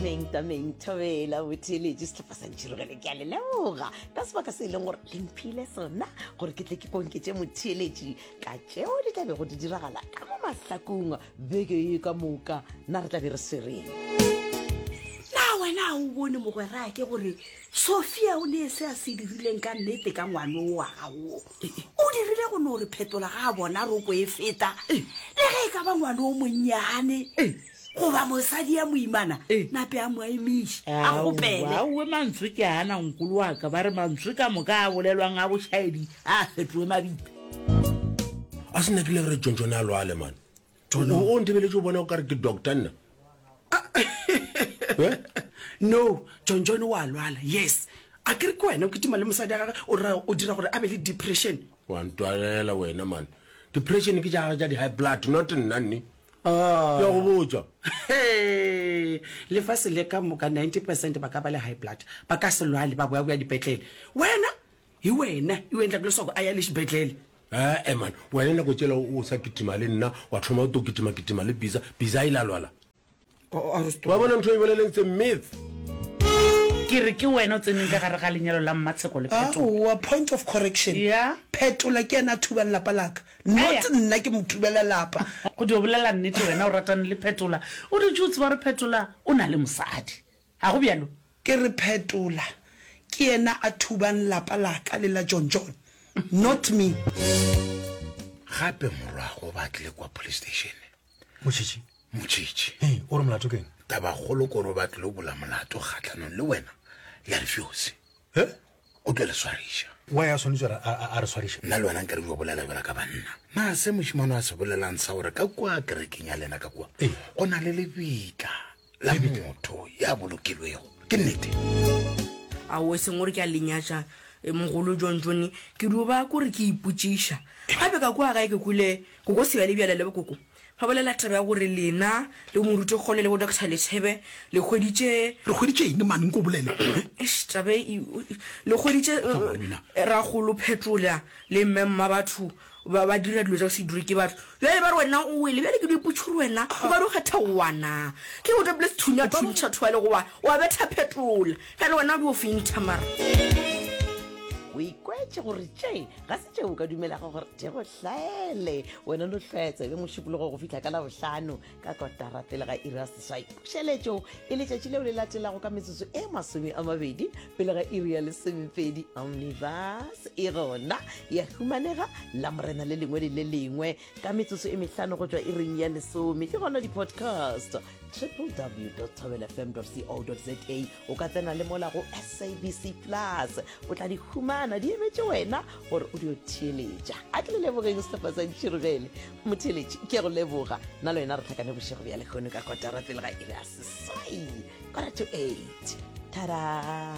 tameng tameng thobela botheletše setlhopha sa ntšhirogele ke a le leboga ka sebaka se e leng gore le mphile sona gore ke tle ke konketse motheletši ka tšeo di tla bego di diragala ka mo mahlakong beke e ka moka na re tla be re swereng na wena a o bone mogwera ke gore sophia o ne se a se dirileng ka nnete ka ngwane o wa gago o dirile go no re phetola ga a bona roko e feta le ge e ka ba ngwane o monnyane goba mosadi ya moimana Eh. nape a mo emiše a Aowa, kgopele aowe mantswe ke ana nkolo wa ka ba re mantswe ka moka a bolelwang a bošaedi a a fetoe mabitla a se nna ke ile re tšontšone a lwale mane o o ntebeletše o bona o kare ke doctor nna Eh? no tšontšone wa lwala yes a ke re ke wena o kitima le mosadi ya gage o ra o dira gore a be le depression wa ntwalela wena mane depression ke jagage ja di-high blood not nna nne Ah. Ke a go botša. Hee, lefase le ka moka 90 percent ba ka ba le high blood ba ka se lwale ba boyaboya dipetlele wena hi wena i wendla ku leswaku a ya le xibedhlele Eh, eh man, wena nako tšela o sa kitima le nna, wa thoma o to kitima kitima le Biza, Biza a ile a lwala. wa bona ntho e boleleng tse myth ke re ke wena o tseneng ka gare ga lenyalo la mmatsheko le phetoa point of correction phetola ke ena a thubang lapa laka not nna ke mo thubela lapa go di o bolela nnete wena o ratane le phetola o dutse o tseba gore phetola o na le mosadi ga go bjalo ke re phetola ke ena a thubang lapa laka le la john john not me gape morwago ba tle kwa police station motšhitšhi motšhitšhi ee o re molato keng tabagolo koro ba tlilo bola molato kgatlhanong le wena ya re fjose e o tlo le swariša wa ya swanetse gore a re swariša nna le wena nka re jo bolela jala ka banna na se mošimano a se bolelang sa gore ka kua kerekeng ya lena ka kua go na le lebitla la motho ya bolokilwego ke nnete a o seng gore ke a lenyatša e, mogolo john jone ke duba kore ke ipotsiša gape ka kwa gae ke kule koko seba le bjala le bokoko ba bolela taba ya gore lena le moruti kgole le bo doctor letshebe le kgweditše re kgweditše eng mane nko bolele Eish, taba e- e- le kgweditše eh, ragolo phetola le mmemma batho Ba ba dira dilo tša go se dure ke batho. Bjale ba re wena o wele. Bjale ke di potšo gore wena o ka di kgetha wana. Ke go topile sethunya thuntšha thwale goba wa betha phetola. Bjale wena o di o fintha mara. O ikwetše gore tše ga se tšeo o ka dumelago gore di go hlaele. Wena no hlwaya tsebe mošupologo go fihla ka labohlano. ka kotara pele ga iri ya seswai pušeletšo e letšatši leo le latelago ka metsotso e masome a mabedi pele ga iri ya lesomepedi omnibus e gona ya humanega la morena le lengwe le le lengwe ka metsotso e mehlano go tšwa iring ya lesome ke gona di-podcast www tabelfm co za o ka tsena le mola go sabc plus o tla di humana di emetše wena gore o dio theeletša a ke le lebogeng sehlopha sa diširogele motheeletši ke go leboga nna le wena re tlhakane bošego bja lekgono ka kotara pele ga ere a seswai kora to eight tada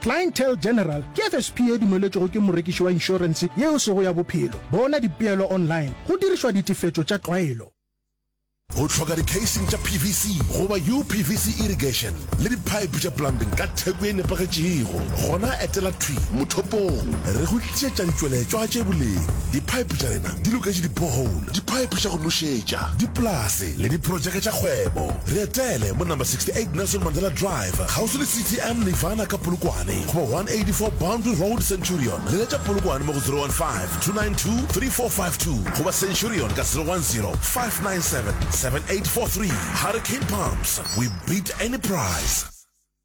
Clientele General ke FSP e dumeletšwego ke morekiši wa inšorense yeo sego ya bophelo. Bona dipeelo online go dirišwa ditefetšo tša tlwaelo. O hloka dikheising tša PVC goba UPVC irrigation le diphaephe tša plumbing ka theko e nepagetšego? Gona etela thwi mothopong re go tlišetša ditšweletšwa tše boleng. Diphaephe tša rena di loketše dipohole, diphaephe tša go nošetša, dipolase, le diprotšeke tša kgwebo. Re etele mo Number 68 Nelson Mandela Drive, kgauswi le CTM Nirvana ka Polokwane, goba 184 Boundary Road, Centurion. Leletša Polokwane mo go 015-292-3452 goba Centurion ka 010-597-7843. Hurricane Pumps, we beat any price!